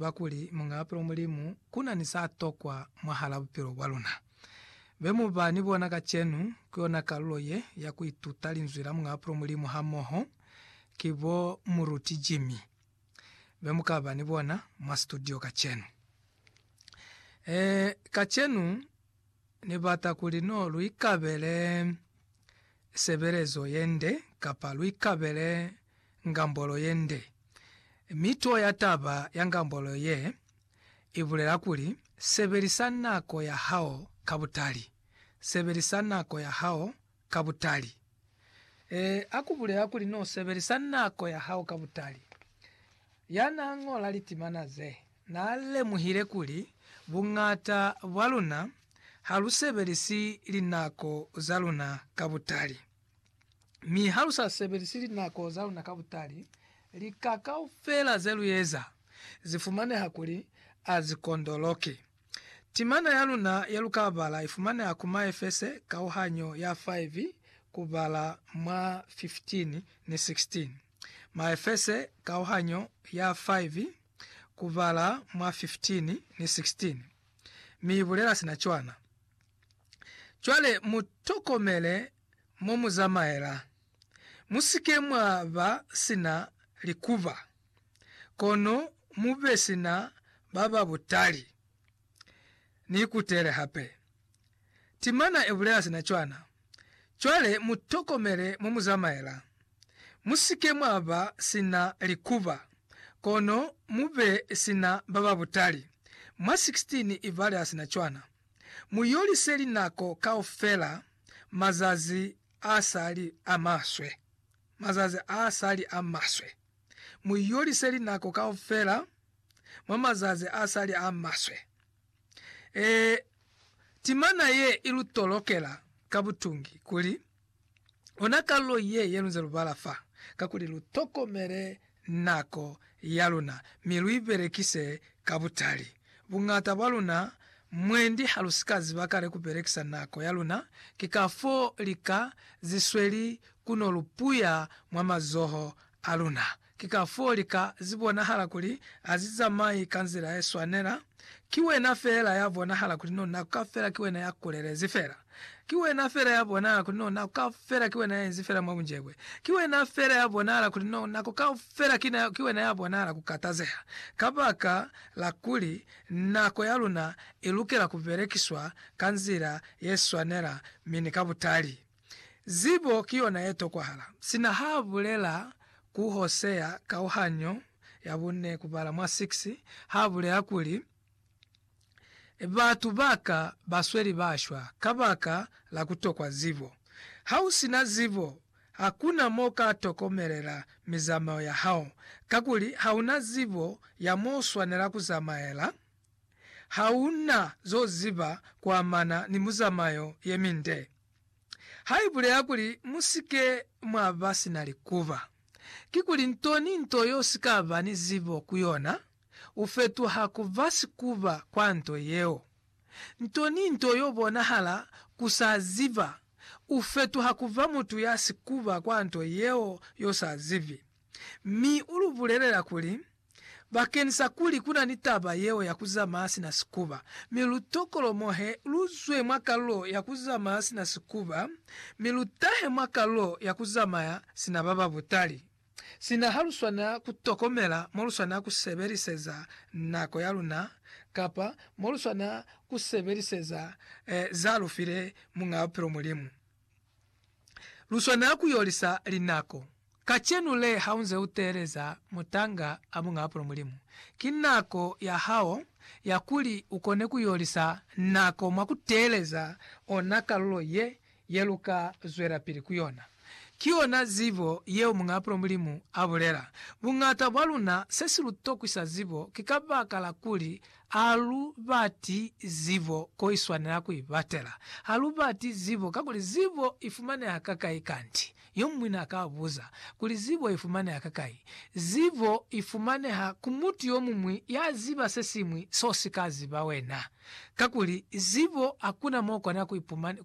ba kuli mung'apelo Mulimu ku na ni sa tokwa mwahal'a bupilo bwa luna. Be mu ba ni bona kacenu ku yona kalulo ye ya ku ituta linzwi la mung'apelo Mulimu hamoho ki bo Muruti Jimmy, be mu ka ba ni bona mwa situdio kacenu. Ee, kacenu Ni bata kuli no lu ikabele sebelezo ye nde kapa lu ikabele ngambolo ye nde. Mito ya taba ya ngambolo ye i bulela kuli, Sebelisa nako ya hao ka butali. Sebelisa nako ya hao ka butali. E, a ku bulela kuli n'o sebelisa nako ya hao ka butali. Ya n'a ñola litimana ze, n'a lemuhile kuli buñata bwa luna ha lu sebelisi linako za luna ka butali. Mi ha lu sa sebelisi linako za luna ka butali, lika kaufela ze lu eza zi fumaneha kuli a zi kondoloki. Timana ya luna ye lu ka bala i fumaneha ku Maefese kauhanyo ya 5 kubala mwa 15 ni 16. Maefese kauhanyo ya 5 kubala mwa 15 ni 16 mi i bulela sina cwana. Cwale mu tokomele mo mu zamaela. Mu si ke mwa ba sina likuba, kono mu be sina ba ba butali. Ni ikutele hape. Timana e bulela sina cwana. Cwale mu tokomele mo mu zamaela. Mu si ke mwa ba sina likuba, kono mu be sina ba ba butali. Mwa 16 i balela sina cwana. Mu yolise linako kaufela mazazi a sa li a maswe, mazazi a sa li a maswe. Mu yolise linako kaufela mwa mazazi a sa li a maswe. Ee, timana ye i lu tolokela ka butungi kuli, Ona kalulo ye ye lunze lubala fa, kakuli lu tokomele nako ya luna mi lu ibelekise ka butali. Buñata bwa luna mwendi ha lu si ka ziba kale ku belekisa nako ya luna, ki kafoo lika zisweli ku no lu puya mwa mazoho a luna Ki kafoo lika zi bonahala kuli ha zi zamai ka nzila ye swanela. Ki wena feela ya bonahala kuli no na ka fela ki wena ya kulelezi feela. Ki wena feela ya bonahala kuli no nako kaufela ki wena ya inzi feela mwa bunjebwe. Ki wena feela ya bonahala kuli no nako kaufela ki, ki wena ya bonahala ku katazeha. Kabaka la kuli nako ya luna i lukela ku belekiswa ka nzila ye swanela mi ni ka butali. Zibo ki yona ye tokwahala. Sina ha bulela ku Hosea kauhanyo ya bune kubala mwa 6, ha bulela kuli, Batu ba ka ba sweli ba shwa kabaka la ku tokwa zibo. Ha u si na zibo, hakuna mo u ka tokomelela mizamao ya hao, kakuli ha u na zibo ya mo u swanela ku zamaela, ha u na zo ziba ku amana ni muzamayo ye minde. ha i bulela kuli, Mu si ke mwa ba sina likuba. Kikuli nto ni nto yo si ka ba ni zibo ku yona, u fetuha ku ba sikuba kwa nto yeo. Nto ni nto yo bonahala ku sa ziba, u fetuha ku ba mutu ya sikuba kwa nto yeo yo sa zibi. mi u lu bulelela kuli, Bakeni sa kuli ku na ni taba yeo ya ku zamaya sina sikuba, mi lu tokolomohe, lu zwe mwa kalulo ya ku zamaya sina sikuba, mi lu tahe mwa kalulo ya ku zamaya sina ba ba butali. Sina ha lu swanela ku tokomela mo lu swanela ku sebeliseza nako ya luna kapa mo lu swanela ku sebeliseza za lu file Muñaa Bupilo, Mulimu. lu swanela ku yo lisa linako. Kacenu le ha u nze u teeleza mutanga a bunga apulo Mulimu, ki nako ya hao ya kuli u kone ku yo lisa nako mwa ku teeleza ona kalulo ye, ye lu ka zwelapili ku yona. Ki yona zibo yeo Muñ'a Apulo Mulimu a bulela. Buñata bwa luna se si lu tokwisa zibo ki kabakala kuli Ha lu bati zibo ko i swanela ku i batela. Ha lu bati zibo kakuli zibo i fumaneha kakai kanti? Yo muñwi n'a ka buza kuli, Zibo i fumaneha kakai? Zibo i fumaneha ku mutu yo muñwi ya ziba se siñwi s'o si ka ziba wena. Kakuli zibo hakuna m'o kona ku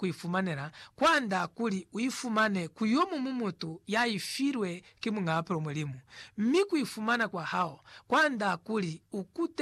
i fumanela kwand'a kuli u i fumane ku yo muñwi mutu ya i filwe ki Muñ'a Bupilo Mulimu, mi ku i fumana kwa hao kwand'a kuli u kute